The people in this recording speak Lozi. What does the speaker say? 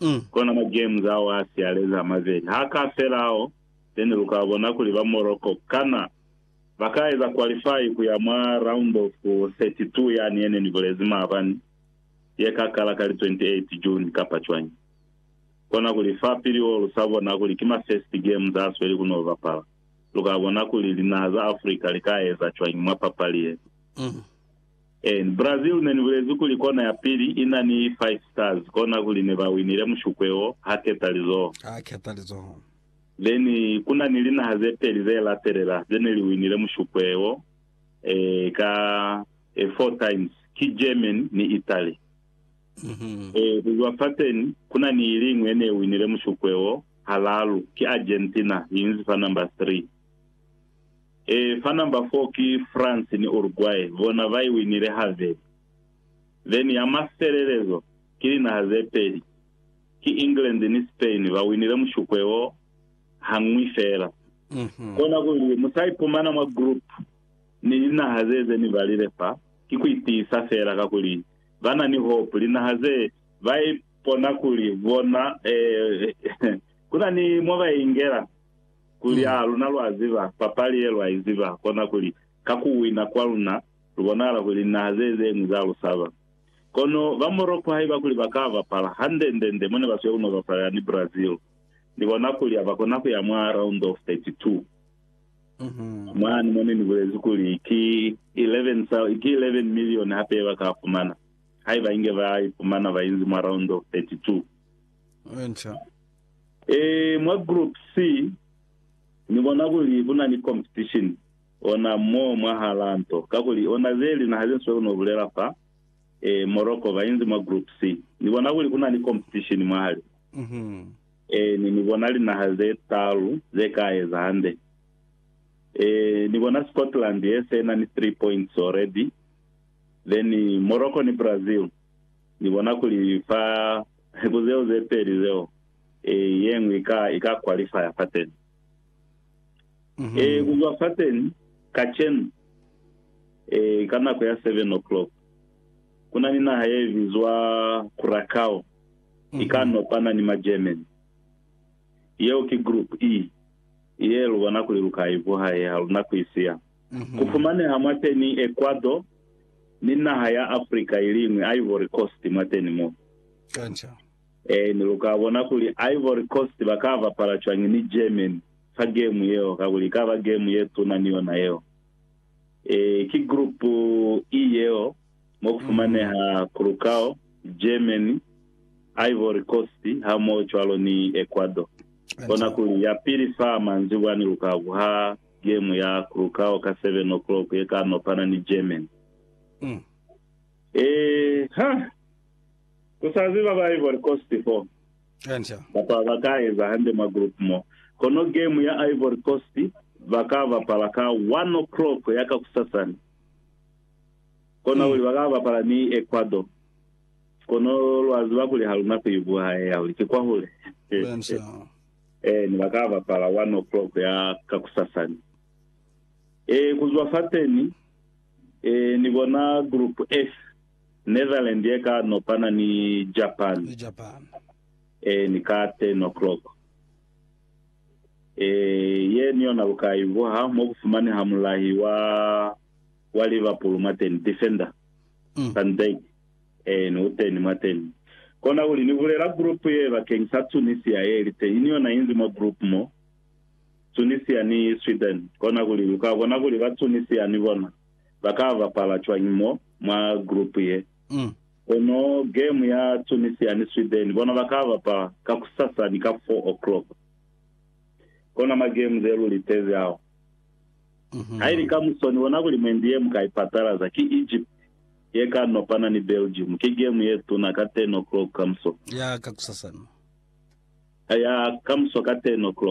Mm. Kona ma games ao a sialezi a mabeli ha ka fela ao, then lu ka bona kuli ba Morocco kana ba ka eza qualify ku ya mwa round of 32 yani ye ne ni bulezi maabani ye ka kala ka li 28 June kapa cwañi. Kona kuli fa pili o lu sa bona kuli ki ma first games a sweli ku no bapala, lu ka bona kuli linaha za Africa li ka eza cwañi mwa papali ye. Mm. Ee, Brazil ne ni bulezi kuli kona ya pili i na ni Five Stars, kona kuli ne ba winile mushukwe wo, ha keta lizoho. Ha keta lizoho. Then, ku na ni linaha ze peli ze latelela ze ne li winile mushukwe wo, ee, ka, ee, four times. Ki Germany ni Italy. Mm-hmm. Ee, kuzwa fateni, ku na ni iliñwi ye ne winile mushukwe wo, halalu, ki Argentina, yi inzi fa number three. E, fa number four ki France ni Uruguay, bona ba i winile haveli. Then ya mafelelezo ki linaha ze peli, ki England ni Spain, ba winile mushukwe wo hañwi fela. Kona kuli mu sa ipumana mwa group ni linaha ze ze ni balile fa, ki ku itiisa fela, kakuli ba na ni hope. Linaha ze, ba ipona kuli bona, eh, ku na ni mo ba ingela. kuli, A luna lwa ziba papali ye lwa iziba kona kuli, ka ku wina kwa luna, lu bonahala kuli linaha ze zeñwi za lu saba. Kono ba Morocco haiba kuli ba ka bapala, hande-nde-nde mo ne ba siyo ku no bapalela ni Brazil, ni bona kuli ha ba kona ku ya mwa round of 32. Mwani mo ne ni bulezi kuli ki 11 sa, ki 11 million hape ye ba ka fumana, haiba inge ba ipumana ba inzi mwa round of 32. Enca. Ee, mwa Group C Ni bona kuli ku na ni competition ona mo mwahalaa nto, kakuli ona ze linaha ze Ni sweli no bulela fa, ee, Morocco ba inzi mwa Group C. Ni bona kuli ku na ni competition mwahali. Ee, ni, ni bona linaha ze talu ze ka eza hande. Ee, ni bona Scotland ye se na ni three points already, then Morocco ni Brazil, ni bona kuli fa Ku zeo ze peli zeo, ye ñwi i ka, i ka kwalifaya fateni. Ee, ku zwa fateni, kacenu, ee, ka nako ya seven o'clock, ku na ni naha ye bizwa Curacao, i ka nopana ni Magermany. Yeo ki Group E, ye lu bona kuli lu ka i vuha ye ha lu na ku i siya. Ku fumaneha mwateni Ecuador ni naha ya Africa iliñwi, Ivory Coast, mwateni mo. Kanca. Eeni, luka bona kuli Ivory Coast baka bapala cwañi ni Germany fa gemu yeo, kakuli ikaba gemu ye tuna ni yona yeo. Ee, ki Group E yeo, mo ku fumaneha Curacao, Germany, Ivory Coast, hamoho cwalo ni Ecuador. Bona kuli yapili fa manzibwani luka buha. game ya Curacao ka 7 o'clock ye ka nopana ni Germany. Mm. Eh, ha! Ku sa ziba ba Ivory Coast fo. Enca. Kapa ba ka eza hande mwa group mo. Kono game ya Ivory Coast ba ka bapala ka 1 o'clock ya ka kusasani. Kona kuli ba ka bapala ni Ecuador. Kono lwa ziba kuli ha luna ku i buha ye ya kuli ki kwahule. Enca. Ee, ne ba ka bapala one o'clock ya kakusasa ni. Ee, ku zwa fateni, ee, ni bona Group F, Netherlands ye ka nopana ni Japan. Ni Japan. Ee, ni ka ten o'clock. Ee, ye ni yona lu ka ivuha mo ku fumaneha mulahi wa, wa Liverpool mwateni, defender, Van Dijk. Ee, ni uteni mwateni. Kona kuli ni bulela group ye bakeng sa Tunisia ye li teñi ni yona inzi mwa group mo, Tunisia ni Sweden. Kona kuli luka bona kuli ba Tunisia ni bona ba ka bapala cwañi mo mwa group ye. Kono game ya Tunisia ni Sweden bona ba ka bapala kakusasa ni ka 4 o'clock. Kona ma game ze lu litezi ao. Haili kamuso ni bona kuli mwendi ye mu ka ipatalaza ki Egypt. ye ka nopana ni Belgium. Ki gemu ye tuna ka 10 o'clock kamuso. Ya kakusasana. Ya kamuso ka 10 o'clock.